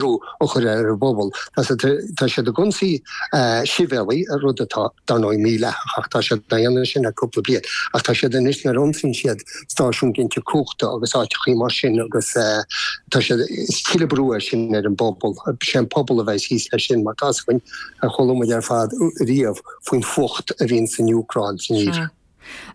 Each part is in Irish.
brú a chur ar an bpobal. Tá siad ag ionsaí sibhialtaigh, rud atá, dar ndóigh, mídhleathach ach tá siad á dhéanamh sin le cúpla bliain. Ach tá siad anois, nuair a ionsaíonn siad stáisiúin ginte cumhachta agus áiteachaí mar sin agus tá siad, is tuilleadh brú é sin ar an bpobal. Sé an pobal a bheidh thíos leis sin mar tá a fhios againn, chuala muid ar fad riamh faoin fuacht a bhíonn san Úcráin, san Eoraip.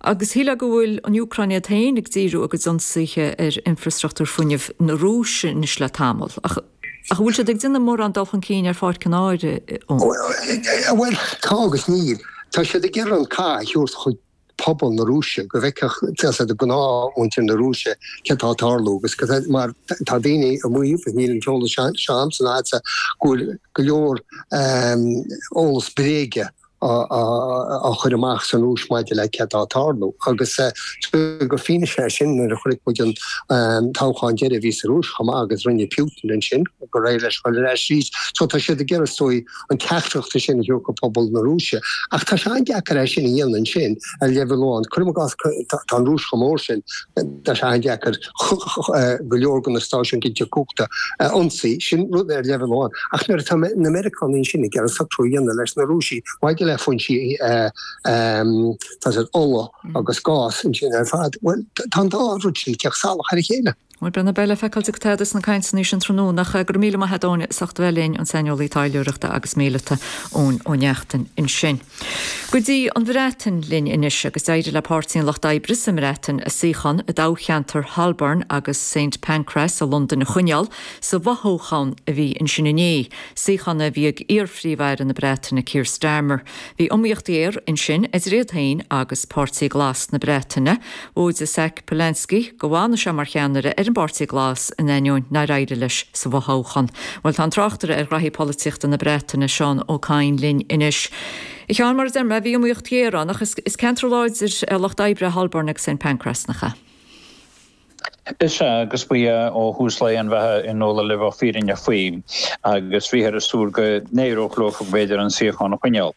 Agus síleadh go bhfuil an Úcráin iad féin ag díriú a gcuid ionsaithe ar infreastruchtúr fuinnimh na Rúise anois le tamall. Ach an bhfuil siad ag déanamh mórán dul chun cinn ar pháirc an áir ann? Bhuel, tá agus níl. Tá siad ag iarraidh an cath a thabhairt chuig pobal na Rúise, go bhfeicfeadh gnáthmhuintir na Rúise céard atá ag tarlú. Mar tá daoine ag maíomh, ach níl an t-eolas seo a'msa ná a'dsa, go bhfuil go leor eolas bréige á chur amach san Rúis maidir le céard atá ag tarlú. Agus tuige gur fianaise é sin nuair a chonaic muid an toghchán deiridh a bhí sa Rúis chomh maith agus rinne Putin ansin go réidh leis dul ar ais arís. So tá siad ag iarraidh is dóigh an teachtaireacht ansin a thabhairt chuig pobal na Rúise. Ach tá sé an-deacair é sin a dhéanamh ansin ar leibhéal amháin. Cuirim i gcás tá an Rúis chomh mór sin tá sé an-deacair go leor de na stáisiúin ginte cumhachta a ionsaí, sin rud ar leibhéal amháin, ach nuair atá na Meiriceánaigh ansin ag iarraidh socrú a dhéanamh leis na Rúisigh maidir le foinsí ola agus gáis ansin ar fad, bhuel, tá an dá rud sin ag teacht salach ar a chéile. Bhuel, beidh le feiceáil céard a tharlós sna cainteanna sin tráthnóna. Ach go raibh míle maith a'd, a Eoin, as ucht a bheith linn an saineolaí taidhleoireachta agus míleata, Eoin Ó Neachtain ansin. Go dtí an Bhreatain linn anois agus d'éirigh le Páirtí an Lucht Oibre sa mBreatain a suíochán i dtoghcheantar Holborn agus Saint Pancras i Londain a choinneáil sa bhfothoghchán a bhí ansin inné, suíochán a bhí ag iarPhríomh-Aire na Breataine Keir Starmer. Bhí iomaíocht ghéar ansin idir iad féin agus Páirtí Glas na Breataine. Mhaígh Zack Polanski go bhfanfadh sé mar cheannaire ar an bPáirtí Glas in ainneoin nár éirigh leis sa bhfothoghchán. Bhuel, tá an tráchtaire ar ghnaithí polaitíochta na Breataine, Seán Ó Cadhain linn anois. A Sheáin, mar a deir mé, bhí iomaíocht ghéar ann, ach is ceantar láidir de Lucht Oibre Holborn agus Saint Pancras, nach ea? Is ea, agus ba ea ó thús lae an bheatha i ndáiríre le bheith fírinneach faoi, agus bhíothas ag súil go n-éireodh leo b'fhéidir an suíochán a choinneáil.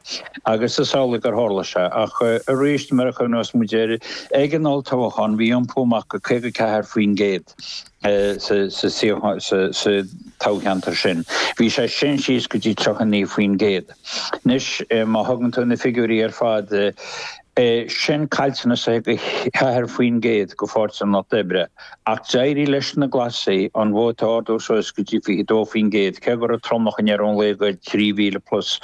Agus is amhlaidh gur tharla sé. Ach arís, nuair a chuimhneos muid air, ag an olltoghchán bhí iompú amach de 54% sa toghcheantar sin. Bhí sé sin síos go dtí 39%. Anois má thugann tú na figiúirí ar fad, é sin caillteanas de 4% do Pháirtí an Lucht Oibre, ach d'éirigh leis na Glasaigh an vóta a ardú suas go dtí 22%, cé go raibh tromlach i ndeireadh an lae de 3,000 plus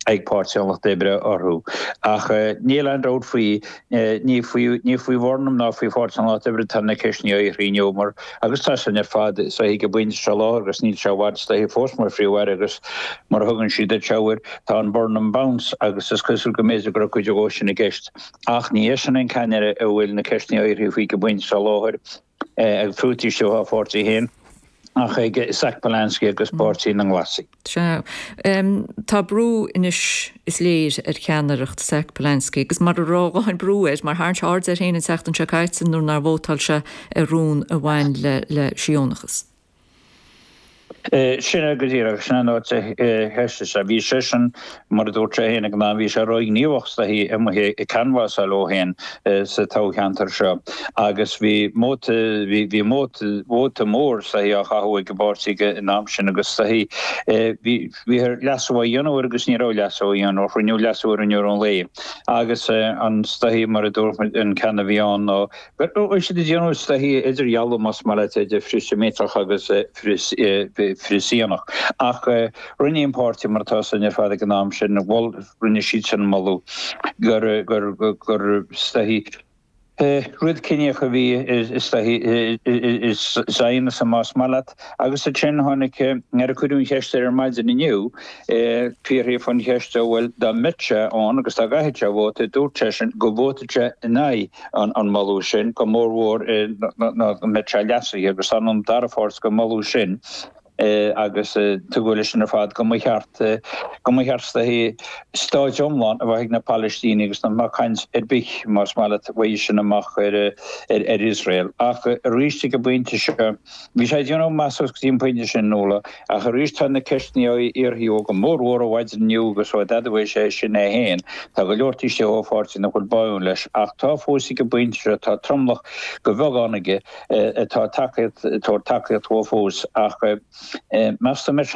ag Páirtí an Lucht Oibre orthu. Ach níl aon dabht faoi, ní faoi Bhurnham ná faoi Pháirtí an Lucht Oibre atá na ceisteanna á bhfiafraí inniu mar, Agus tá sin ar fad is dóichí ag an bpointe seo láthair agus níl sé i bhfad is dóichí fós mar Phríomh-Aire agus mar a thugann siad thall air tá an Burnham Bounce agus is cosúil go mb'fhéidir go raibh cuid dhó sin i gceist. Ach ní eisean an ceannaire a bhfuil na ceisteanna á fhiafraí faoi ag an bpointe seo láthair, fiú taobh istigh dá pháirtí féin, ach ag Zack Polanski agus páirtí na nGlasaigh. Sea. Tá brú anois, is léir, ar cheannaireacht Zack Polanski agus mura raibh a dhóthain brú air, mar tharraing sé aird air féin an tseachtain seo caite nuair nár vótáil sé ar rún a bhain le Siónachas. Sin é go díreach. Sin an áit a sheas sé. Bhí seisean Mar a dúirt sé féin ag an am, bhí sé róghníomhach is dóichí amuigh ag canbhasáil dhó féin sa toghcheantar seo agus bhí vóta mór is dóichí á chaitheamh ag an bpáirtí ag an am sin agus is dóichí bhí air leasú a dhéanamh air agus ní raibh leasú a dhéanamh air, rinneadh leasú air i ndeireadh an lae agus an is dóichí mar a dúirt mé an ceann a bhí ann ná Beidh siad ag déanamh is dóichí idirdhealú más maith leat idir frith-Sheimíteach agus frith-Shiónach. Ach rinne an páirtí, mar atá sin ar fad ag an am sin, bhuel, rinne siad sin an moladh gur, gur, gur is dóichí rud ciníoch a bhí i is dóichí Zionism más maith leat. Agus ansin tháinig, nuair a cuireadh an cheist air ar maidin inniu, fiafraíodh an cheist, bhuel dá mbeadh sé ann agus dá gcaithfeadh sé vóta, dúirt seisean go vótálfadh sé in aghaidh an moladh sin, go mór mhór muna mbeadh sé leasaithe agus tá an dara pháirt den mholadh sin agus tugadh leis sin ar fad go mba cheart go mba cheart is dóichí stát iomlán a bheith ag na Palaistínigh agus nach mbeadh caint ar bith más maith leat uaidh sin amach ar ar Iosrael ach arís ag an bpointe seo Bhí sé ag déanamh go maith suas go dtí an pointe sin, Nuala, ach arís tá na ceisteanna á fhiafraí, go mórmhór ó mhaidin inniu agus ó d'admhaigh sé sin é féin. Tá go leor taobh istigh dá pháirtí nach bhfuil báúil leis, ach tá fós ag an bpointe seo tá tromlach de bheagán aige atá ag tabhairt tacaíocht dhó fós. Ach meas tú an mbeidh